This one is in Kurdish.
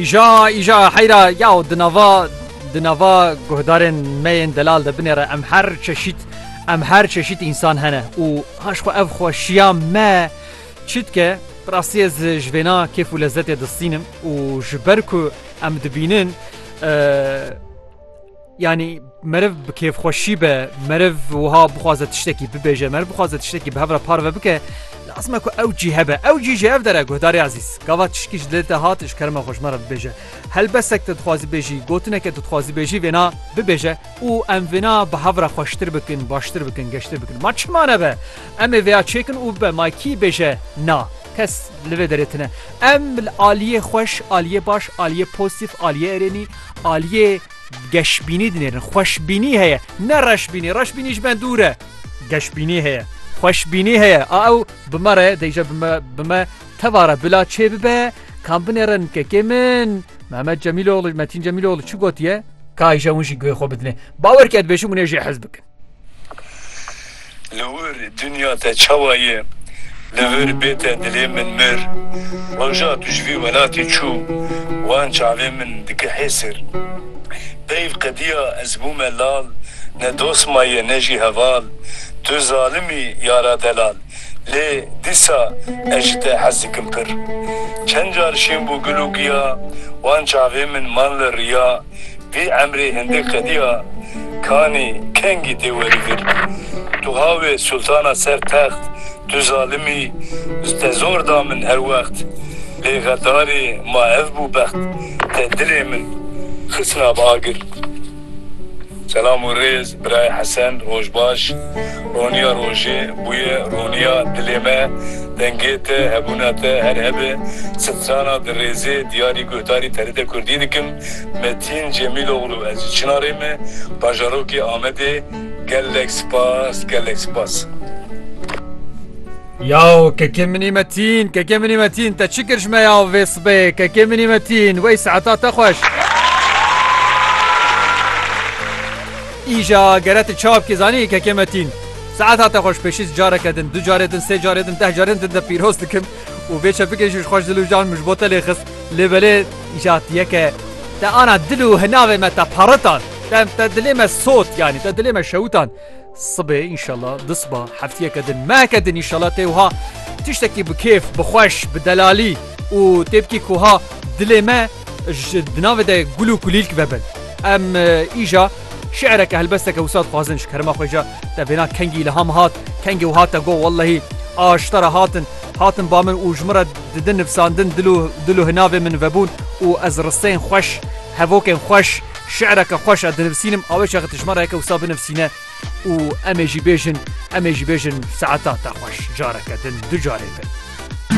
Îja îja heyra yaw di nava di nava guhdarên me yên delal de binêre em her çeşît em her çeşît însan hene û haş xwe ev xweşiya me çi dike rastî ez ji vêna kêf û lezzetê distînim û ji ber ku em dibînin Yanî meriv bi kêfxweşî be meriv wiha bixwaze tiştekî bibêje meriv bixwaze tiştekî bi hev re parve bike lazim e ku ew cî hebe ew cî ji hev dere guhdarê ezîz gava tişkî ji lê te hat ji kerema xwe ji me re bibêje helbesek te dixwazî bêjî gotineke tu dixwazî bêjî vêna bibêje û em vêna bi hev re xweştir bikin baştir bikin geştir bikin ma çima nebe em ê vêya çêkin û bibe ma kî bêje na kes li vê derê tune em aliyê xweş aliyê baş aliyê pozîtîf aliyê erênî aliyê Geşbînî dinêrin, xweşbînî heye, ne reşbînî, reşbînî ji me dûr e. Geşbînî heye, xweşbînî heye, a ew bi me re deyje bi me bi me teva re bila çê bibe, kan binêre nikekê min, Mehmet Cemîloglû, Metîn Cemîloglû çi gotiye? Ka îşew hûn jî guhê xwe bidinê. Bawer ke dibêjim hûn ê jê hez bikin. Li wir dinya te çawa ye? Li vir bê te dilê min mir. Roja tu ji vî welatê çû wan çavê min dikihê sir. Peyv qediya ez bûme lal ne dost ma ye ne jî heval. Tu zalim î yara delal lê dîsa ez ji te hez dikim pir. Çend car şîn bû gul û giya wan çavê min man li riya. Vî emrê hindê qedîya kanî kengî tê werî vir. Tu hawê sultana ser text, tu zalim î, te zor da min her wext. Lê xedarê ma ev bû bext, te dilê min xisna bi agir. Selam û rêz birayê Hesen, roj baş. Roniya rojê bûye roniya dilê me. Dengê te, hebûna te her hebe. Sitrana di rêzê diyarî guhdarî TRT Kurdî dikim. Me Tîn Cemîloglu Ez ji Çinarê me bajarokê Amedê gelek spas gelek spas. Yaw kekê minî me tîn kekê minî me tîn te çi kir ji me yaw vê sibê kekê minî me tîn wey saeta te xweş. Îja gere tu ça bikî zanî kekê me tîn saeta te xweş pêşî careke din du carê din sê carê din deh carê din te pîroz dikim û vê çepikê jî ji xweş dil û jan min ji bo te lê xist lê belê Îja ti ye ke te ana dil û hinavê me te paritan. Te te dilê me sot yanî te dilê me şewitan. Sibê înşela di siba heftiyeke din meheke din înşela tê wiha tiştekî bi kêf, bi xweş, bi delalî û tê bikî ku wiha dilê me ji di navê de gul û kulîlk vebin. Em îja şi'reke helbesteke wisa dixwazin ji kerema xwe îja te bêna kengî îlham hat, kengê wiha te got wellehî aştera hatin, hatin ba min û ji min re Didin nivsandin dil û dil û hinavên min vebûn û ez risteyên xweş, hevokên xweş, şi'reke xweş a dinivsînim awê çaxê tijmara yeke wisa binivsîne û emê jî bêjin emê jî bêjin saeta te xweş careke din du carê bin.